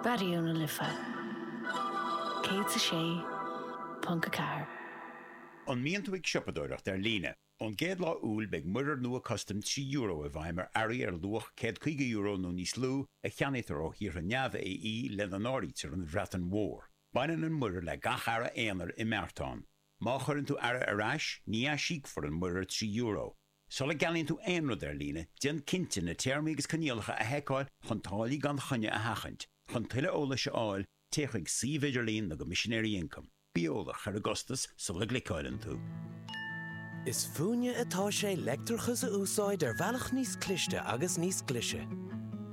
Raidió na Life 106.4. An mbíonn tú ag siopadóireacht ar líne? Ón gcéad lá Iúil beidh muirear nua custaim trí euro i bhfeidhm ar earraí ar luach €150 nó níos lú a cheannaítear ó thíortha neamh-AE lena n-áirítear an Bhreatain Mhór. Baineann an muirear le gach earra aonair i mbeartán. Má chuireann tú earra ar ais, ní aisíocfar an muirear trí euro. Sula gceannaíonn tú aon rud ar líne, déan cinnte na téarmaí agus coinníollacha a sheiceáil chun táillí gan choinne a sheachaint. Chun tuilleadh eolais a fháil, téigh chuig suíomh idirlín na gCoimisinéirí Ioncaim. Bí eolach ar an gcostas sula gcliceáileann tú. Is fúinne atá sé leictreachas a úsáid ar bhealach níos cliste agus níos glaise.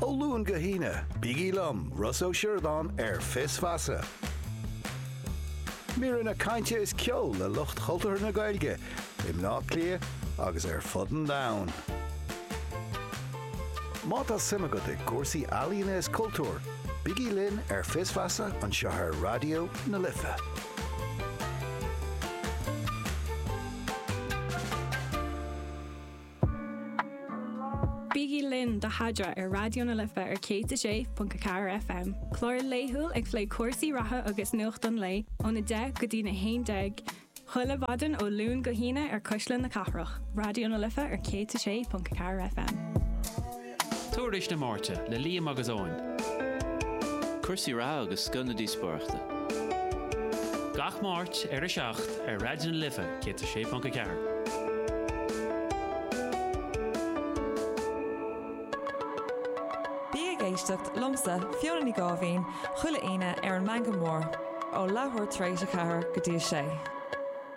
Ó Luan go hAoine, bígí liom, Ross Ó Sioradáin, ar Fios Feasa. Míreanna cainte is ceol le lucht chultúrtha na Gaeilge i mBleá Cliath agus ar fud an domhain. Má tá suim agat i gcúrsaí ealaíona is cultúir, bígí linn ar Fios Feasa anseo ar Raidió na Life. Bígí linn do Adhmhaidin ar Raidió na Life ar 106.4 FM, clár laethúil ag plé cúrsaí reatha agus nuacht an lae óna deich go dtína haon déag, chuile mhaidin ó Luan go hAoine ar Cuisle na Cathrach, Raidió na Life ar 106.4 FM. Tuairisc na Máirte le Liam agus Eoin. Cúrsaí reatha agus scoth na díospóireachta. Gach Máirt ar 7 ar Raidió na Life 106.4. Bí ag éisteacht liomsa, Fiona Ní Gháibhín, chuile Aoine ar an Meangadh Mór ó leathuair tar éis a ceathair go dtí a sé.